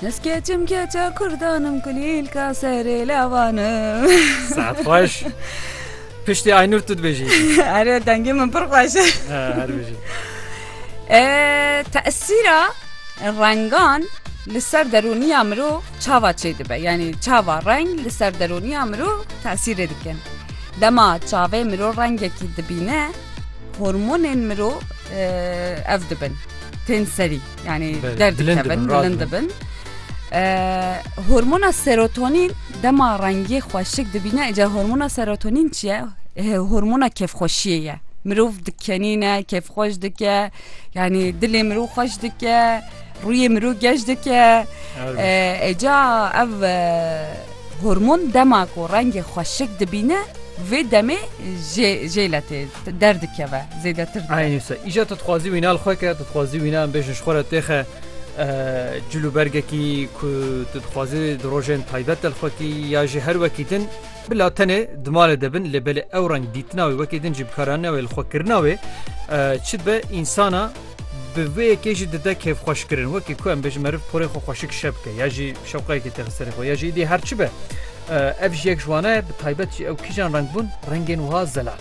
Ez keçim keça kurdanim kulîl ka serê lavanim. Saat xweş. Piştî Aynur tu dibêjî. Erê dengê min pir xweş e. Her bijî. Tesîra rengan li ser derûniya mirov çava çê dibe. Yanî çava reng li ser derûniya mirov tesîrê dikin. Dema çavê mirov rengekî dibîne hormonên mirov ev dibin. tên serî yanî derdikevin bilind dibin hormona serotonî dema rengê xweşik dibîne ece hormona serotonîn çi ye hormona kêfxweşiyê ye mirov dikenîne kêfxweş dike yanî dilê mirov xweş dike rûyê mirov geş dike êca ev hormon dema ku rengê xweşik dibîne vê demê jêle tê Derdikeve zêdetir dike. Eynî wisa. Îşa tu dixwazî wîna li xwe ke, tu dixwazî wîna em bêjin ji xwe re têxe cil û bergekî ku tu dixwazî di rojên taybet de li xwe kî ya jî her wekî din bila tenê di malê de bin lê belê ew reng dîtina wê wekî din jî bikaranîna wê li xwe kirina wê çi dibe însana bi vê yekê jî dide kêfxweşkirin wekî ku em bêjin meriv porê xwe xweşik şe bike ya jî şewqeyekê têxe serê xwe ya jî dî her çi be ev ji yek ji wana ye bi taybet jî ew kîjan reng bûn rengên wiha zelal.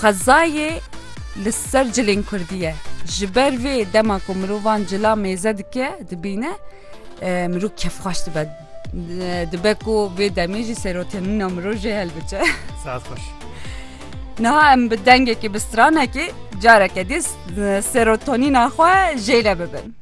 Xwezayê li ser cilên kurdî ye. Ji ber vê dema ku mirovan cila mêze dike dibîne mirov kêfxweş dibe. Dibe ku vê demê jî serotênîna mirov jê hilbice. Saet xweş. Niha em bi dengekî bi stranekî careke dî serotonîna xwe jêle bibin.